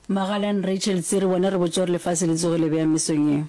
Magalan Rachel Tsiri, Bona re botše gore lefase le tsogile bjang mesong ye.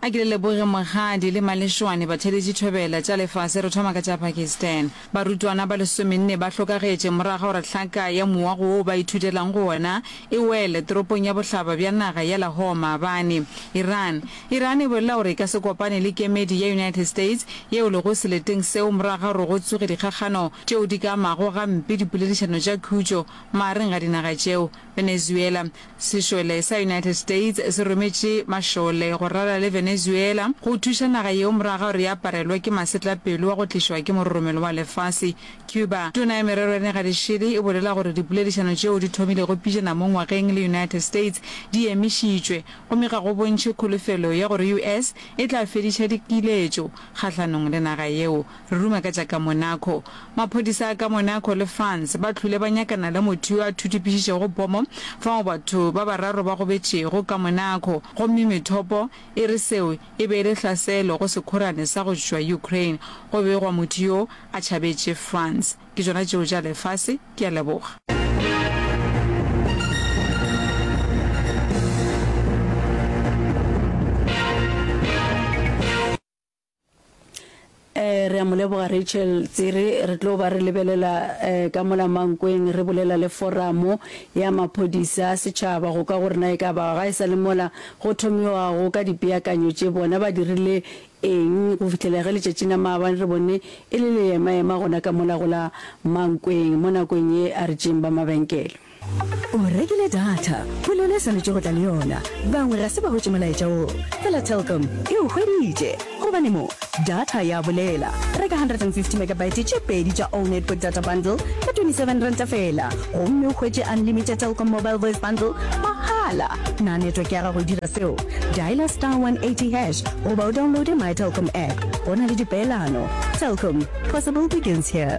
A ke le leboge mokgadi le malešoane batheeletši thobela tša lefase re thoma ka tša Pakistan. Barutwana ba lesomenne ba hlokagetše morago ga gore hlaka ya mowa go wo ba ithutelago go wona e wele toropong ya bohlaba bja naga ya Lahore maabane. Iran Iran e bolela gore e ka se kopane le kemedi ya United States yeo lego seleteng seo morago ga gore go tsoge dikgakgano tšeo di ka amago gampe dipoledišano tša khutšo magareng ga dinaga tšeo Venezuela. Sešole sa United States se rometše mašole go rala le Venezuela go thuša naga yeo morago ga gore e aparelwe ke masetlapelo wa go tlišwa ke mororomelo wa lefase, Cuba. Tona ya Merero ya Negadišele e bolela gore dipoledišano tšeo di thomilego pejana mo ngwageng le United States di emišitšwe, gomme ga go bontšhe kholofelo ya gore US e tla fediša dikiletšo kgahlanong le naga yeo. Re ruma ka tša ka Monaco. Maphodisa a ka Monaco le France ba hlwile ba nyakana le motho yo a thutipišišego pomo fao batho ba bararo ba gobetšego ka Monaco gomme methopo e re seo e be e le hlaselo go sekhorane sa go tšwa Ukraine. Go begwa motho yo a tšhabetše France. Ke tšona tšeo tša lefase. Ke a leboga. Eh, re a mo leboga Rachel Tsere. Re tlo ba re lebelela eh, ka mola mankweng re bolela le foramo ya maphodisa a setšhaba go ka gore na e ka ba ga e sa le mola go thomiwago ka dipeakanyo tše bona ba dirile eng go fitlhela ge letšatši na maabane re bone e le leemaema gona ka mola go la mankweng mo nakong ye a re tšeng ba mabenkele. O rekile data, polelo e swanetše go tla le yona. Bangwe ga se ba hwetše molaetša wo. Fela Telkom e o hweditše. Gobane mo, data ya bolela. Reka 150 megabyte tše pedi tša All Network Data Bundle ka R27 feela gomme o hwetše unlimited Telkom Mobile Voice Bundle mahala. Na network ya gago e dira seo? Dialer star 180 hash goba o downloade My Telkom app. Go na le dipeelano. Telkom, possible begins here.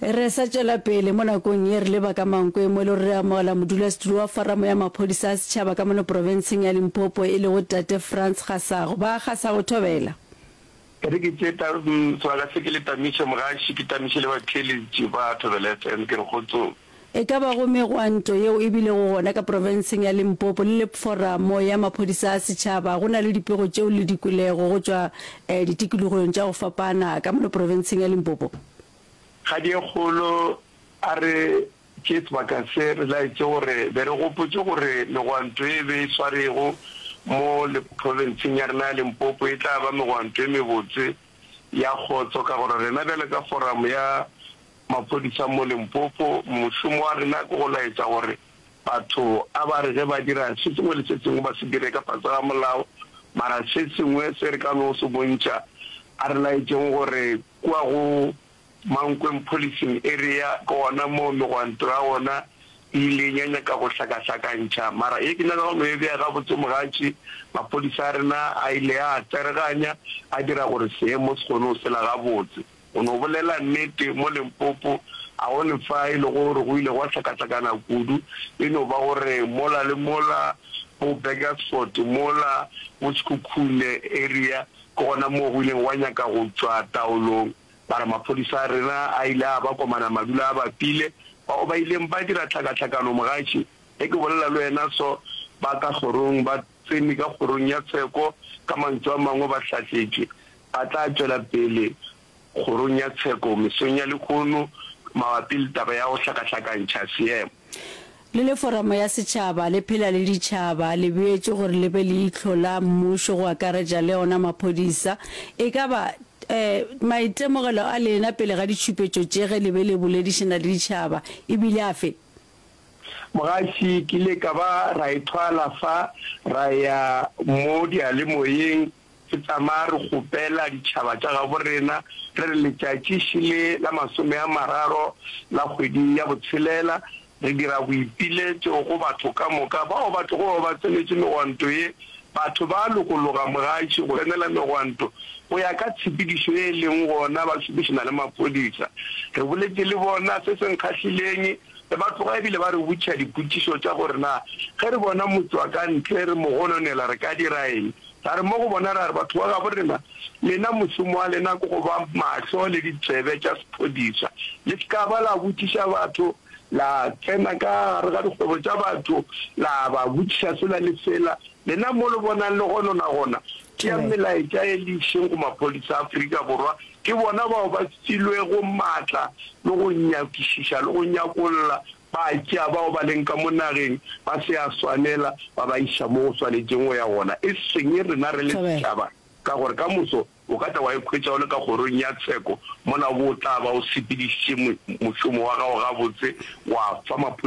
Re sa tšwela pele, mo nakong ye re leba ka mankwe mo e lego re amogela modulasetulo wa Foramo ya Maphodisa a Setšhaba ka mono profenseng ya Limpopo e lego Tate Frans Gasago. Ba Gasago, thobela. Tate ke tše ta, sebaka se ke le tamiše, mogaši ke tamiše le batheeletši ba Thobela FM, ke re kgotsong. E ka bago megwanto yeo e bilego gona ka profenseng ya Limpopo le Lepforamo ya Maphodisa a Setšhaba, go na le dipego tšeo le di kwelego go tšwa ditikologong tša go fapana ka mono profenseng ya Limpopo. Kgadiekgolo a re, Ke sebaka se re laetše gore be re gopotše gore megwanto e be e swarego mo profenseng ya rena ya Limpopo e tla ba megwanto e mebotse ya kgotso ka gore rena bjale ka Foramo ya Maphodisa mo Limpopo, Mošomo wa rena ke go laetša gore batho a ba re ge ba dira se sengwe le se sengwe ba se dire ka fase ga molao, mara se sengwe se re ka no se bontšha a re laetšeng gore kua go Mankweng Policing Area ke gona moo megwanto ya gona e ileng ya nyaka go hlakahlakantšha. Mara ye ke nyaka go no e bea gabotse mogatši, maphodisa a rena a ile a a tsereganya a dira gore seemo se kgone go sela gabotse. O no bolela nnete, mo Limpopo a go ne fa e lego gore go ile gwa hlakahlakana kudu, e no ba gore mola le mola bo Burgersfort mola, bo Sekhukhune area, ke gona moo go ileng gwa nyaka go tšwa taolong. Ba re maphodisa a rena a ile a ba komana madula a bapile, bao ba ileng ba dira tlhakahlakano mogatši, ge ke bolela le wena so, ba ka kgorong ba. tsene ka kgorong ya tsheko, ka mantšu a mangwe ba hlatletše, ba tla tšwela pele kgorong ya tsheko mesong ya lehono mabapi le taba ya go hlakahlakantšha seemo. Le le Foramo ya Setšhaba, le phela le ditšhaba, le beetšwe gore le be leihlo la mmušo go akaretša le ona maphodisa. E ka ba ee, maitemogelo a lena pele ga ditšhupetšo tše ge le be le boledišana le ditšhaba e bile afe? Mogaši ke ile ka ba ra e thwala fa, ra ya mo diyalemoyeng re tsamaya re kgopela ditšhaba tša gabo rena, re re letšatši še le la masome a mararo la kgwedi ya botshelela re dira boipiletšo go batho ka moka bao ba tlogo ba ba tsenetše megwanto ye. Batho ba lokologa, Mogaši, go emela megwanto go ya ka tshepedišo ye e leng gona ba šomišana le maphodisa. Re boletše le bona se se nkgahlileng. Re ba tloga e bile ba re botša dipotšišo tša gore na ge re bona motšwakantle re mo gononela re ka dira eng. Ra re mo go bona, ra re, Batho ba gabo rena, lena mošomo wa lena ke go ba mahlo le ditsebe tša sephodisa. Le se ka ba la botšiša batho, la tsena ka gare ga dikgwebo tša batho la ba botšiša sela le sela. Lena mo le bonang le gonona gona, tšeang melaetša e le išeng go maphodisa a Afrika Borwa Ke bona bao ba filwego matla le go nyakišiša le go nyakolla, ba tšea bao ba leng ka mo nageng ba se a swanela, ba ba iša mo go swanetšeng go ya gona, e seng rena re le setšhaba, ka gore ka moso o ka tla wa ikhwetša o le ka kgorong ya tsheko, mola o bo o tla ba o sepedišitše mošomo wa gago gabotse, wa fa maphodisa.